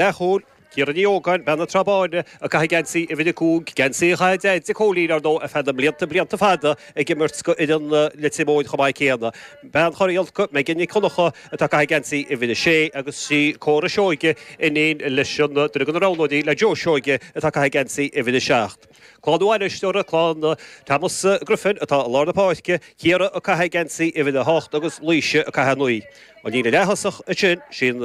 Leathchúil, Ciara Ní Ógáin, bean na Trá Báine ag caitheamh geansaí uimhir a cúig, geansaí a chaith a deaide Cóilín, ar ndóigh, ar feadh na mblianta blianta fada ag imirt go fhoireann Leitir Móir chomh maith céanna. Bean Chorr Iolca, Megan Nic Dhonncha atá ag caitheamh geansaí uimhir a sé agus sí Córa Seoige, iníon leis an duine de na roghnóirí le Joe Seoige atá ag caitheamh geansaí uimhir a seacht. Clann an aisteora, clann Thomas Griffin atá i lár na páirce, Ciara ag caitheamh geansaí uimhir a hocht agus Laoise ag caitheamh a naoi. An líne leaththosach ansin, sin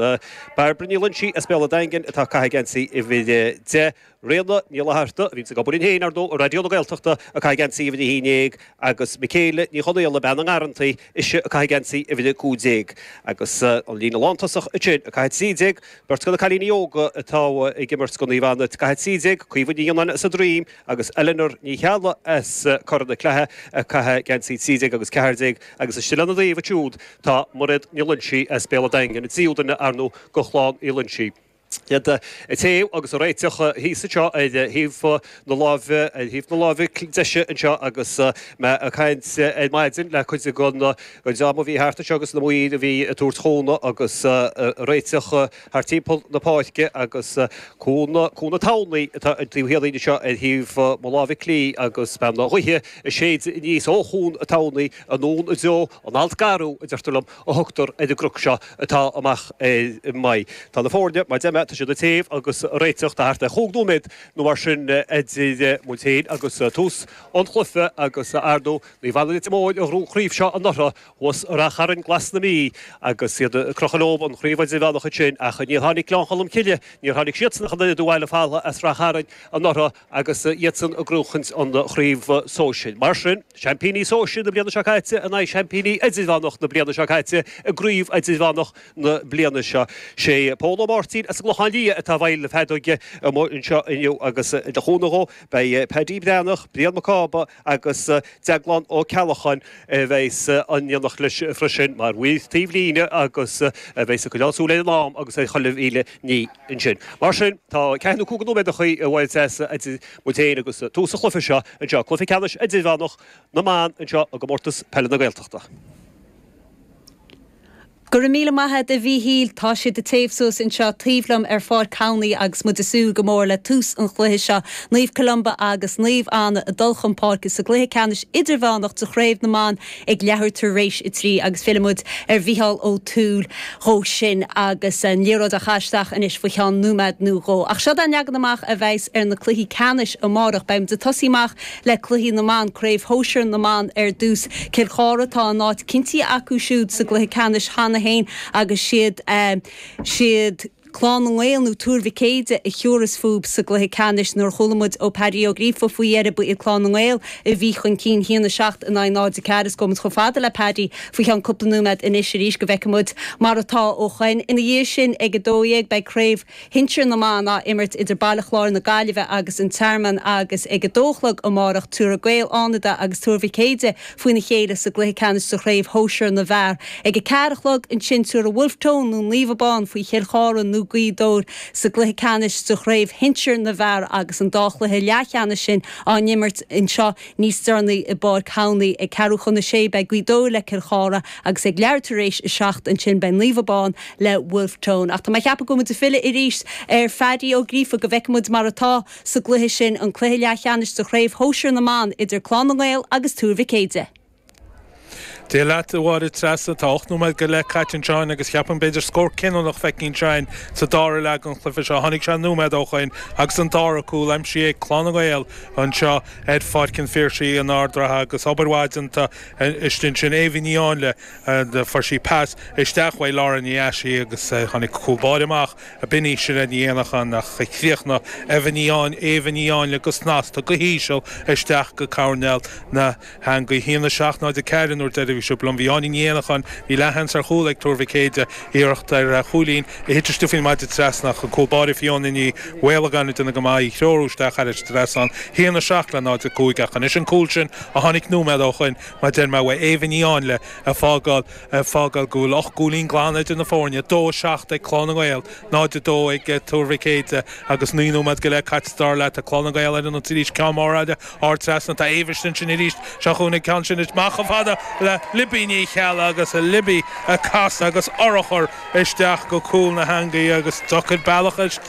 Bairbre Ní Loinsigh as Béal an Daingin atá ag caitheamh geansaí uimhir a deich, Ríona Ní Fhlatharta, a bhíonn ag obair linn féin, ar ndóigh, i Raidió na Gaeltachta, ag caitheamh geansaí uimhir a haon dhéag agus Michelle Ní Chonaola, bean na nGarrantaí, Is í ag caitheamh geansaí uimhir a 15 agus an líne lántosach ansin ag caitheamh 13, beirt de na cailíní óga atá ag imirt do Naomh Anna, ag caitheamh 13, Caoimhe Ní Fhionnáin as An Droim agus Eleanor Ní Cheallaigh as Corr na Claithe ag caitheamh geansaí 13 agus 14 agus istigh lena dtaobh siúd tá Mairéad Ní Loingsigh as Béal a' Daingin, an tríú duine, arnú, go Chlann Uí Loingsigh. Iad ag téamh agus ag réiteach thíos anseo ar thaobh na láimhe, ar thaobh na láimhe deise anseo agus mé ag caint ar maidin le cuid de na dream a bhí thart anseo agus na maoir a bhí ag tabhairt cúnamh agus réiteach thart timpeall na páirce agus cuan, Cuan an Tamhnaigh atá ag an taobh thiar dínn anseo ar thaobh mo láimhe clí agus beagán gaoithe ag séideadh aníos ó Chuan an Tamhnaigh, anonn i dtreo an Alt Garbh a deirtear liom, a thugtar ar an gcnoc seo atá amach ar m'aghaidh. Tá na foirne, mar a deirim, tá siad ag téamh agus ag réiteach. Tá thart ar chúig nóiméad nó mar sin idir muid féin agus tús an chluife agus arnú Naomh Anna Leitir Móir a ghnóthaigh an chraobh seo anuraidh thuas i Rath Chairn glas na Mí agus iad ag crochadh leo an chraobh idirmheánach ansin. Ach níor tháinig Gleann Cholm Cille, níor tháinig siadsan ach an oiread abhaile folamh as Rath Chairn anuraidh. agus iadsan ag gnóthachaint an chraobh sóisir. Mar sin, seaimpíní sóisir na bliana seo caite in aghaidh seaimpíní idirmheánach na bliana seo caite i gcraobh idirmheánach na bliana seo. Sé Pól Ó Máirtín as an gClochán Liath atá i bhfeighil na feadóige amuigh anseo inniu agus le cúnamh dhó beidh Paddy Breathnach, Brian Mac Cába, agus Deaglán Ó Ceallacháin a bheas in éineacht leis freisin mar mhaoir taobh líne agus a bheas ag coinneáil súil ar an am agus ar chuile mhíle ní ansin. Mar sin, tá ceathair nó cúig nóiméad ag roinnt as idir muid féin agus tús an chluiche seo anseo, cluiche ceannais idirmheánach na mban anseo i gComórtas Peile na Gaeltachta. Go raibh míle maith a'd a Mhíchíl, tá siad ag téamh suas anseo taobh liom ar Pháirc Towney agus muid ag súil go mór le tús an chluiche seo, Naomh Columba agus Naomh Anna ag dul chun páirce sa gcluiche ceannais idirmheánach de Chraobh na mBan ag leathuair tar éis a trí agus fillfidh muid ar Mhícheál Ó Tuathail dhó sin agus an liathróid á chaitheamh isteach anois faoi cheann nóiméad nó dhó. Ach seod é an leagan amach a bheidhs ar na cluichí ceannais amárach. Beidh muid ag tosaí amach. le cluichí na mban, Craobh Shóisir na mBan ar dtús, Cill Chartha, tá a n-áit cinntithe acu siúd sa gcluiche ceannais cheana féin agus siad siad Clann na nGael nó Tuar Mhic Éadaigh a thabharfas fúthu sa gcluiche ceannais. Nuair a chuala muid ó Paddy Ó Gríofa faoi dheireadh ba iad Clann na nGael a bhí chun cinn 1 7 in aghaidh 0 4 is gabhfaidh muid chomh fada le Paddy faoi cheann cúpla nóiméad anois arís go bhfeicfidh muid mar atá ó shoin. Ina dhiaidh sin ag 12 beidh Craobh shinsir na mban á imirt idir Baile Chláir na Gaillimhe agus An Tearmann agus ag 2 a chlog amárach tabharfaidh Gaeil Fhánada agus Tuar Mhic Éadaigh faoina chéile sa gcluiche ceannais de chraobh shóisir na bhfear. Ag 4 a chlog ansin tabharfaidh Wolfe Tone nó Naomh Abán faoi Chill Chartha nó Gaoth Dobhair sa gcluiche ceannais de chraobh shinsir na bhfear agus an dá chluiche leathcheannais sin á n-imirt anseo Níos deireanaí i bPáirc Thamhnaí ag ceathrú chun a sé beidh Gaoth Dobhair le Cill Chartha agus ag leathuair tar éis a seacht ansin beidh Naomh Abán le Wolfe Tone. Ach tá mé ag ceapadh go bhfuil muid ag filleadh arís ar Phaddy Ó Gríofa go bhfeicfidh muid mar atá sa gcluiche sin, an cluiche leathcheannais de chraobh shóisir na mban idir Clann na nGael agus Tuar Mhic Éadaigh. Dia leat, a Mháire Treasa. Tá ocht nóiméad go leith caite anseo in agus cheapfainn b'fhéidir scór cinniúnach feicthe anseo in sa dara leath den chluiche seo. Tháinig sé nóiméad ó shoin agus an dara cúl aimsithe ag Clann na nGael anseo ar Pháirc an Phiarsaigh in Ard an Rátha agus obair mhaith déanta istigh ansin. Éabha Ní Áinle fuair sí pas isteach uaidh Laura Ní Ais í agus tháinig cúl báire amach a b'shin í Sinéad Ní Éanacháin ach chríochnaigh Éabha Ní Áin Éabha Ní Áinle go snasta go híseal isteach go coirnéal na heangaí 1 7 0 4 an uair dheiridh a bhí sibh liom bhí Áine Ní Éanacháin Bhí leath-sheans ar chúl ag Tuar Mhic Éadaigh iarracht ar chúilín a thit isteach faoin maide trasna ach an cúl báire Fióna Ní Mhaolagáin ag déanamh go maith í a threorú isteach thar an maide trasna 1 7 le 0, 5 ach anois an cúl sin a tháinig nóiméad ó shoin mar deir mé uaidh Éabha Ní Áinle ag fágáil Ag fágáil go bhfuil ocht gcúilín glan idir na foirne, 2, 7 ag Clann na nGael, 0, 2 ag Tuar Mhic Éadaigh, agus naoi nóiméad go leith caite, sa dara leath, tá Clann na nGael ar an ionsaí arís, ceann mór eile, ard trasna, tá Éabha istigh ansin arís, seo chugainn an ceann sin amach chomh fada le Libby Ní Cheallaigh, agus Libby ag casadh agus urchar isteach go cúl na heangaí agus deacair bealach